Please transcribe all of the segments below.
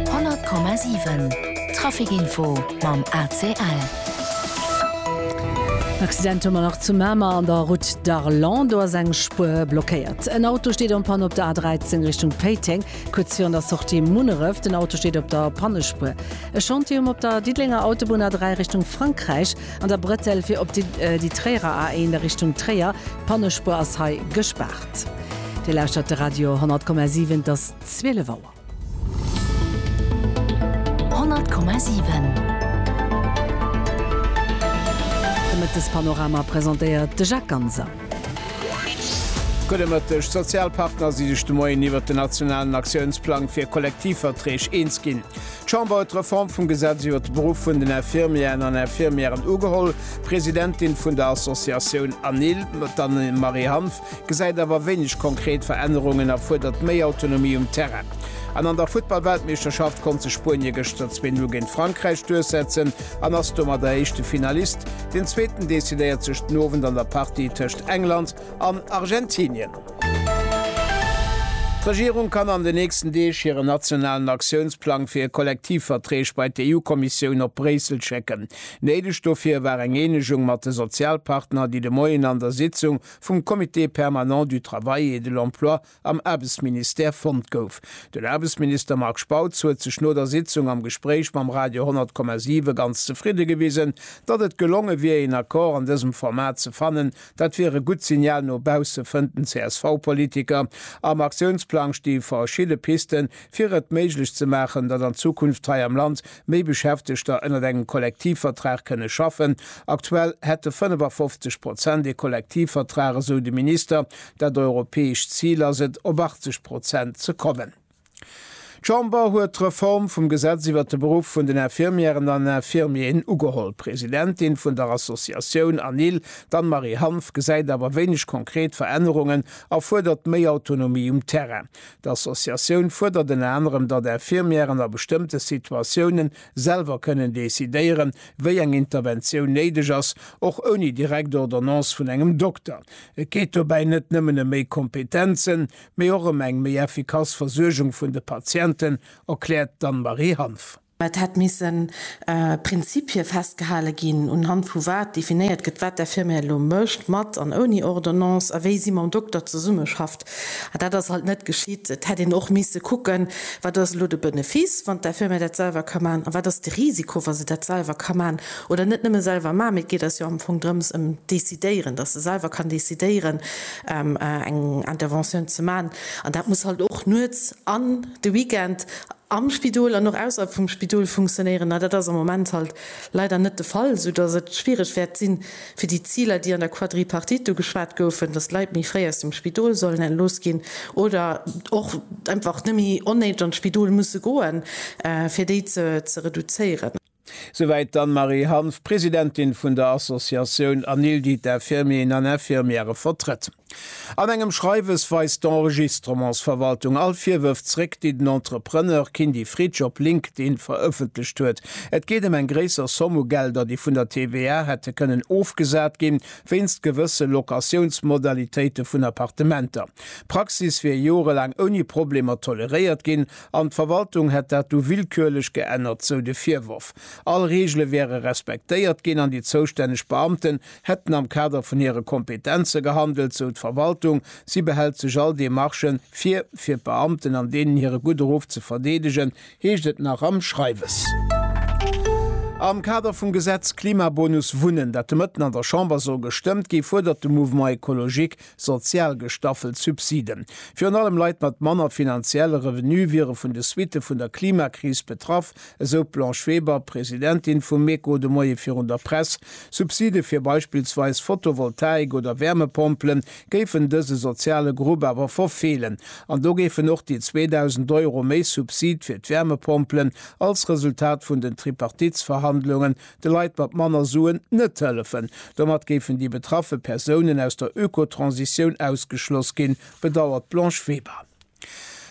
100,7 Trafic-Info mam ACL. En Accident hu mer nach zu Mamer an der Route d'Arlon. Do ass eng Spuer blockéiert. En Auto steet en panne op der A13 Richtung Péiteng, kuerz virun der Sortie Munneref. Den Auto steet op der Pannespuer. E Chantier um op der Diddelenger Autobunn A3 Richtung Frankräich an der Bretelle fir op déi Tréierer A1 a Richtung Tréier. D'Pannespuer ass hei gespaart. Dir lauschtert de Radio 100,7. 12 Auer. 100,7 De Mëttespanorama presentéiert de Jacques Ganser. Gudde Mëtteg. D'Sozialpartner si sech de Moien iwwert den nationalen Aktiounsplang fir Kollektivverträg eens ginn. D'Chamber huet d'Reform vum Gesetz iwwert de Beruff vun den Infirmieren an Infirmièren ugeholl. D'Presidentin vun der Associatioun ANIL, d'Anne-Marie Hanff, gesäit awer wéineg konkret Verännerungen a fuerdert méi Autonomie um Terrain. An an der Futtball-Weltmeeschterschaft konnt sech Spuenie gëschter zwee Null géint Frankräich duerchsetzen an ass domadder éischte Finalist. Den Zweeten decidéiert sech den Owend an der Partie tëscht England an Argentinien. D'Regierung kann an den nächsten Deeg hiren nationalen Aktiounsplang fir Kollektivverträg bei d'EU-Kommissioun op Bréissel schécken. Néideg dofir war eng Eenegung mat de Sozialpartner, déi de Moien an der Sitzung vum Comité permanent du travail et de l'emploi am Aarbechtsministère fonnt gouf. Den Aarbechtsminister Marc Spautz huet sech no der Sitzung am Gespréich mam Radio 100,7 ganz zefridde gewisen, datt et gelonge wier een Accord an dësem Format ze fannen. Dat wier e gutt Signal no bausse, fënnt den CSV-Politiker. Am Aktiounsplang sti verschidde Piste fir et méiglech ze maachen, datt an Zukunft hei am Land méi Beschäftegter ënnert engem Kollektivvertrag kënne schaffen. Aktuell hätte 55 Prozent ee Kollektivvertrag, esou de Minister. Dat europäescht Zil ass et, op 80 Prozent ze kommen. D'Chamber huet d'Reform vum Gesetz iwwert de Beruff vun den Infirmièren an Infirmieren ugeholl. D'Presidentin vun der Associatioun ANIL, d'Anne-Marie Hanff, gesäit awer wéineg konkret Verännerungen a fuerdert méi Autonomie um Terrain. D'Associatioun fuerdert ënner anerem, datt Infirmièren a bestëmmte Situatiounen selwer kënnen decidéieren, wéi eng Interventioun néideg ass, och ouni direkt Ordonnance vun engem Dokter. Et geet dobäi net nëmmen ëm méi Kompetenzen, mee och ëm eng méi effikass Versuergung vun de Patienten, erkläert d'Anne-Marie Hanff. Mä et hätt misse Prinzipie festgehale ginn, unhand vu wat definéiert gëtt, wat d'Infirmière elo mécht, mat an ouni Ordonnance, a wéi si mam Dokter zesummeschafft. A dat ass halt net geschitt. Et hätt een och misse kucken, wat ass elo de Benefice, wann d'Infirmière dat selwer ka maachen, a wat ass de Risiko, wa se dat selwer ka maachen, oder net nëmme selwer maachen, mee et geet eis jo am Fong drëms, ëm d'Decidéieren, dass se selwer kann decidéieren, eng Interventioun ze maachen. An dat muss halt och nuets an. de Weekend am Spidol an och ausserhalb vum Spidol funktionéieren. A dat ass am Moment halt leider net de Fall, soudass et schwiereg wäert sinn, fir déi Ziler, déi an der Quadripartite do geschwat goufen, dass d'Leit méi fréi aus dem Spidol sollen entlooss ginn oder och einfach net méi onnéideg an d'Spidol musse goen, fir déi ze reduzéieren. Souwäit d'Anne-Marie Hanff, Presidentin vun der Associatioun ANILDI d'Infirmieren an Infirmièrë vertrëtt. An engem Schreiwes weist d'Enregistrements-Verwaltung all Virwërf zréck, déi den Entrepreneur Kindy Fritsch op LinkedIn verëffentlecht huet. Et geet ëm eng gréisser Somm u Gelder, déi vun der TVA hätte kënnen ofgesat ginn, wéinst gewësse Locatiounsmodalitéite vun Appartementer. D'Praxis wier jorelaang ouni Problemer toleréiert ginn An d'Verwaltung hätt dat du willkürlech geännert, sou de Virworf. All Reegele wäre respektéiert ginn an déi zoustänneg Beamten hätten am Kader vun hire Kompetenze gehandelt, sou d'Verwaltung. Si behält sech all Demarchen vir, fir d'Beamten an deenen hire gudde Ruff ze verdeedegen, heescht et nach am Schreiwes. Am Kader vum Gesetz Klimabonus Wunnen, dat de Mëtten an der Chamber soll gestëmmt ginn, fuerdert de Mouvement Ecologique Sozial gestaffelt Subsiden. Virun allem Leit mat manner finanzielle Revenue wiere vun de Suitte vun der Klimakris betraff, esou d'Blanche Weber, Presidentin vum MECO de Moie virun der Press. Subside fir beispillsweis Fotovoltaik oder Wärmepompelen géifen dëse soziale Grupp awer verfeelen. An do géifen och déi 2.000 Euro méi Subside fir d'Wärmepompelen als Resultat vun den Tripartitsverhandlungen de Leit mat manner Suen net hëllefen. Domat géifen déi betraffe Persounen aus der Ökotransitioun ausgeschloss ginn, bedauert d'Blanche Weber.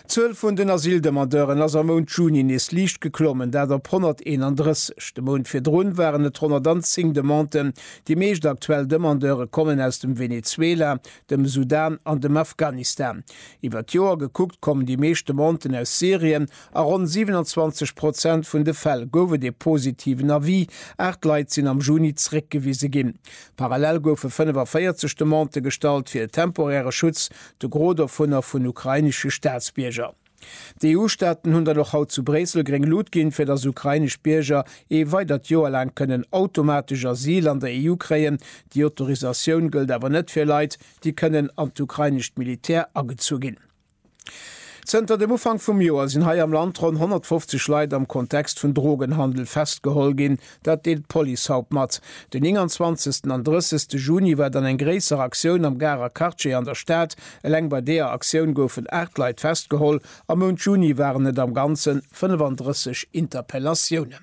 D'Zuel vun den Asyldemandeuren ass am Mount Juni nees liicht geklommen, dat op 131. De Mount virdrun waren et 110 Demanden. Déi meescht aktuell Demandeure kommen aus dem Venezuela, dem Sudan an dem Afghanistan. Iwwer d'Joer gekuckt kommen déi meescht Demanden aus Syrien A ronn 27 Prozent vun de Fäll gouf et ee positiven Avis, aacht Leit sinn am Juni zeréckgewise ginn. Parallel goufe 45 Demandë gestallt fir e temporäre Schutz, de Gros dovunner vun ukrainesche Staatsbierger. D'EU-Staaten hunn dann och haut zu Bréissel gréng Lut ginn, fir datt ukrainesch Bierger ee weidert Joer laang kënnen automatesch Asyl an der EU kréien. Déi Autorisatioun gëllt awer net fir Leit, déi kënnen an d'ukrainescht Militär agezu ginn. Zënter dem Ufank vum Joer sinn hei am Land ronn 150 Leit am Kontext vun Drogenhandel festgeholl ginn. Dat deelt d'Police haut mat. Den 29 an 30 Juni war dann eng gréisser Aktioun am Garer Quartier an der Stad. Eleng bei deeër Aktioun goufen 8 Leit festgeholl. Am Mount Juni waren et am Ganzen 35 Interpellatiounen.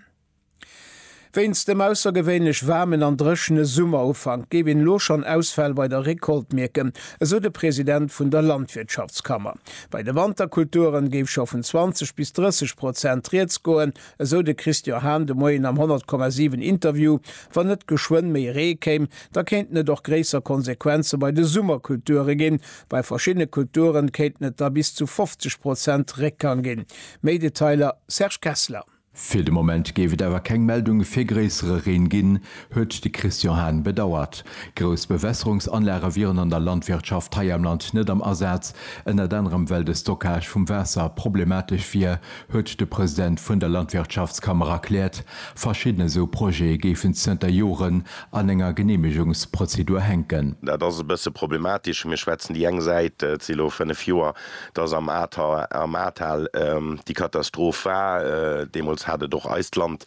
Wéinst dem aussergewéinlech waarmen an dréchene Summerufank géif een elo schonn Ausfäll bei der Recolte mierken, esou de President vun der Landwirtschaftskammer. Bei de Wanterkulturen géif scho vun 20 bis 30 Prozent rieds goen, esou de Christian Hahn de Moien am 100,7 Interview. Wann net geschwënn méi Ree kéim, da kéinten et och gréisser Konsequenze bei de Summerkulture ginn. Bei verschiddene Kulturen kéinten et da bis zu 50 Prozent Réckgang ginn. Méi Detailer, Serge Kessler. Fir de Moment géif et awer keng Meldunge fir gréissere Reen ginn, huet de Christian Hahn bedauert. Grouss Bewässerungsanlage wieren an der Landwirtschaft hei am Land net am Asaz, ënnert anerem well de Stockage vum Waasser problematesch wier, huet de President vun der Landwirtschaftskammer erkläert. Verschidden esou Projete géifen zënter Joren an enger Geneemegungsprozedur hänken. Dat ass e bësse problematesch. Mir schwätzen déi eng Säit, et si elo fënnef Joer, dass am Ahrtal, am Ahrtal déi Katastroph war. Deemools hat et och eist Land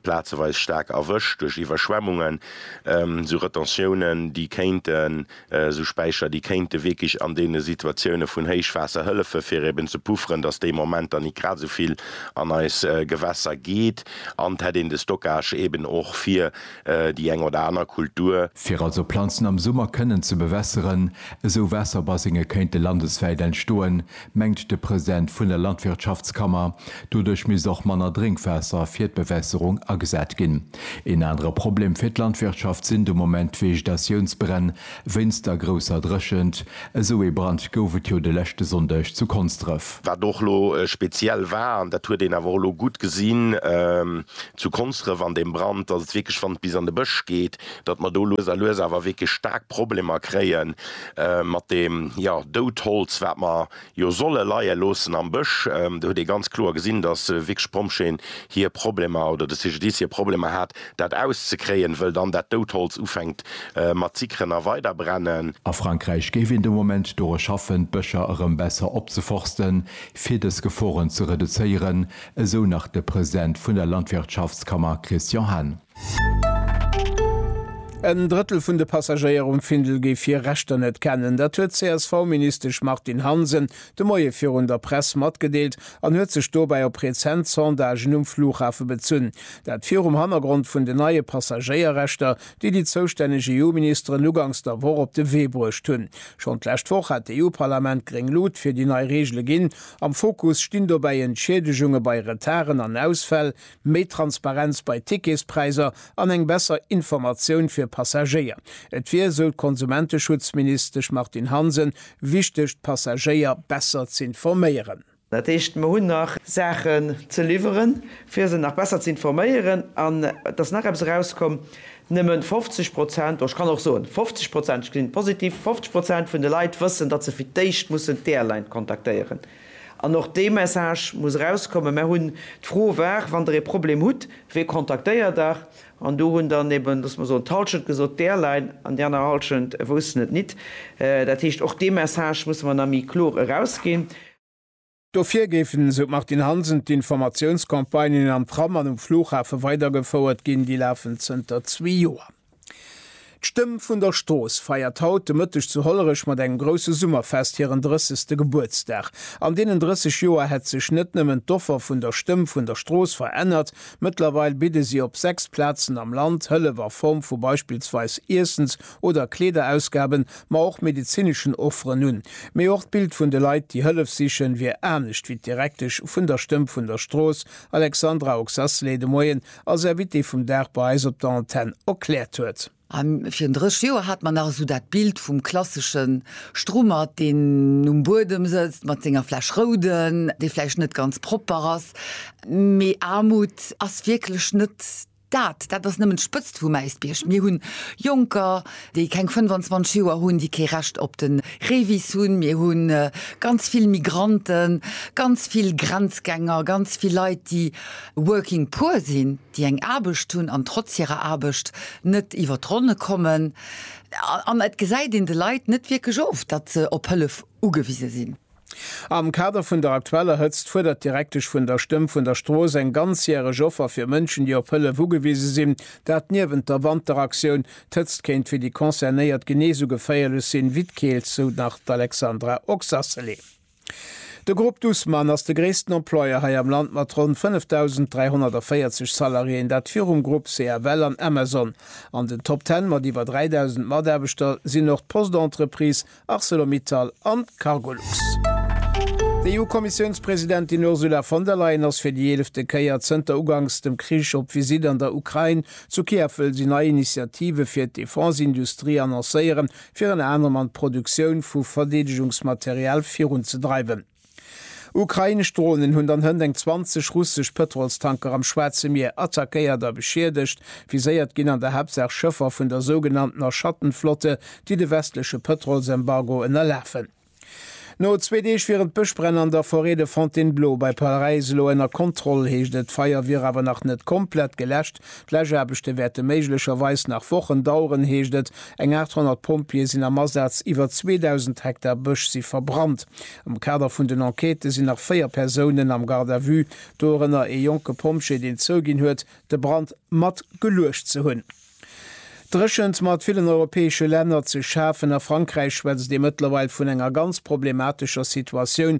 plazeweis staark erwëscht duerch Iwwerschwemmungen, esou Retentiounen, déi kéinten, esou Späicher, déi kéinte wierklech an deene Situatioune vun Héichwaasser hëllefen, fir eben ze pufferen, dass dee Moment dann nit grad esou vill an eis Gewässer geet. An et hätt een de Stockage eben och fir déi eng oder aner Kultur. Fir also Planzen am Summer kënnen ze bewässeren, esou Waasserbassinge kéinte landeswäit entstoen, mengt de President vun der Landwirtschaftskammer. Doduerch misst och manner Drénkwaasser fir d'Bewässerung agesat ginn. Een anere Problem fir d'Landwirtschaft sinn de Moment d'Vegetatiounsbränn, Wéinst der grousser Dréchent, esou ee Brand gouf et jo de leschte Sonndeg zu Konsdref. Wat och elo speziell war, an dat huet een awer och elo gutt gesinn zu Konsdref an deem Brand, datt et wierklech, wann et bis an de Bësch geet, datt mer do lues a lues awer wierklech staark Problemer kréie mat deem, jo, Doudholz, wat mer jo solle leie loossen am Bësch. Do huet ee ganz kloer gesinn, datt wierklech d'Pompjeeën hir Problemer oder de CGDIS hir Problemer hat, dat auszekréien, wëll dann dat dout Holz ufänkt mat zickeren a weiderbrennen. A Frankräich géif een de Moment dore schaffen, d'Bëscher erëm besser opzeforsten, fir dës Geforen ze reduzéieren, esou nach de President vun der Landwirtschaftskammer Christian Hahn. En Drëttel vun de Passagéier um Findel géif hir Rechter net kennen. Dat huet d'CSV-Ministesch Martine Hansen de Moie virun der Press matgedeelt an huet sech dobäi op rezent Sondagen um Flughafe bezunn. Dat virum Hannergrond vun den neie Passagéierrechter, déi déi zoustänneg EU-Ministeren ugangs der Woch op de Wee bruecht hunn. Schonn d'lescht Woch hat d'EU-Parlament gréng Lut fir déi nei Reegele ginn. Am Fokus stinn dobäi Entschiedegunge bei Retarden an Ausfäll. méi Transparenz bei Ticketspräiser an eng besser Informatioun fir Passagéier. Et wier, esou d'Konsumenteschutzministesch Martine Hansen, wichteg d'Passagéier besser z'informéieren. Dat heescht, mer hunn nach Saachen ze liwweren, fir se nach besser z'informéieren. An et ass nach eppes erauskomm, Nëmme 50 Prozent, oder ech kann och soen 50 Prozent, ech gesinn et positiv, 50 Prozent vun de Leit wëssen, datt se fir d'éischt mussen d'Airline kontaktéieren. An och dee Message muss erauskommen, Mär hunn d'Fro war, wann Der ee Problem hutt, wee kontaktéiert Der? An do hunn dann eben, loosse mer soen, d'Halschent gesot, d'Airline, an déi aner Halschent woussten et nit. Dat heescht, och dee Message musse mer nach méi kloer erausginn. Dofir géifen, esou d'Martine Hansen, d'Informatiounscampagnen am Tram an um Flughafe weidergefouert ginn. Déi lafen zënter zwee Joer. D'Stëmm vun der Strooss feiert haut de Mëtteg zu Hollerech mat engem grousse Summerfest hiren 30. Gebuertsdag. An deenen 30 Joer hätt sech net nëmmen d'Offer vun der Stëmm vun der Strooss verännert, mëttlerweil bidde si op 6 Plazen am Land Hëllef a Form vu beispillsweis Iessens oder Kleederausgaben, ma och medezineschen Offeren un. Mee och d'Bild vun de Leit, déi Hëllef sichen, wier anescht wéi d'Direktesch vun der Stëmm vun der Strooss, Alexandra Oxasley, de Moien als Invité vum Dag bei eis op der Antenn erkläert huet. A virun 30 Joer hat mer nach esou dat Bild vum klassesche Strummert, deen um Buedem sëtzt mat senger Fläsch Rouden, déi vläicht net ganz propper ass. Mee Aarmut ass wierklech net dat. Dat ass nëmmen d'Spëtzt vum Äisbierg. Mir hunn Jonker, déi keng 25 Joer hunn, déi kee Recht op de Revis hunn, mir hu ganz vill Migranten, ganz vill Grenzgänger, ganz vill Leit, déi working poor sinn, déi eng Aarbecht hunn an trotz hirer Aarbecht net iwwer d'Ronne kommen. An et gesäit een de Leit net wierklech of, datt se op Hëllef ugewise sinn. Am Kader vun der aktueller Hëtzt fuerdert d'Direktesch vun der Stëmm vun der Strooss eng ganzjäreg Offer fir Mënschen, déi op Hëllef ugewise sinn. Dat niewent der Wanteraktioun. D'Hëtzt kéint fir déi Concernéiert genee esou geféierlech sinn wéi d'Keelt, sou nach d'Alexandra Oxacelé. De Grupp Dussmann ass de gréissten Employeur hei am Land mat ronn 5.340 Salariéen, dat virum Grupp CFL an Amazon. An den Top Ten mat iwwer 3.000 Mataarbechter sinn och d'Post-Entreprise, Arcelor-Mittal an d'Cargolux. D'EU-Kommissiounspresidentin Ursula von der Leyen ass fir déi eelefte Kéier zënter uganks dem Krich op Visitt an der Ukrain. Zu Kiew wëll si nei Initiative fir d'Defense-Industrie annoncéieren, fir ënner anerem an d'Produktioun vu Verdeedegungsmaterial virunzedreiwen. Ukrainesch Dronen hunn dann hënt eng 20 russesch Pëtrolstanker am Schwaarze Mier attackéiert a beschiedegt. Viséiert ginn an der Haaptsaach Schëffer vun der sougenanntener Schattenflotte, déi de westleche Pëtrolsembargo ënnerlafen. No zwee Deeg wieren d'Bëschbränn an der Forêt de Fontainebleau bei Paräis elo ënner Kontroll, heescht et. D'Feier wier awer nach net komplett geläscht, D'Läschaarbechte wäerte méiglecherweis nach Wochen daueren, heescht et. Eng 800 Pompjeeë sinn am Asaz, iwwer 2.000 Hektar Bësch si verbrannt. Am Kader vun den Enquêten sinn nach véier Persounen am Garde à vue, dorënner ee jonke Pompjee, deen zouginn huet, de Brand mat geluecht ze hunn. Dréchent mat villen europäesche Länner ze schafen a Frankräich schwätzt ee mëttlerweil vun enger ganz problematescher Situatioun,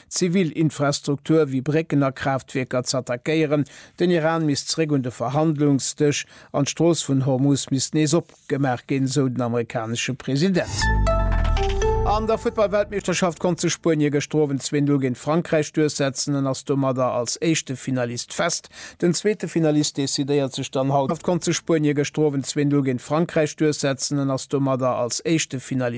zivil Infrastruktur wéi Brécken a Kraaftwierker z'attackéieren, den Iran misst zeréck un de Verhandlungsdësch an d'Strooss vun Hormuz misst nees opgemaach ginn, esou den amerikanesche President. An der Futtball-Weltmeeschterschaft konnt sech Spuenie gëschter Owend 2 Null géint Frankräich duerchsetzen an ass domadder als éischte Finalist fest. Den zweete Finalist decidéiert sech dann haut. Konnt sech Spuenie gëschter Owend 2 Null géint Frankräich duerchsetzen an ass domadder als éischte Finalist.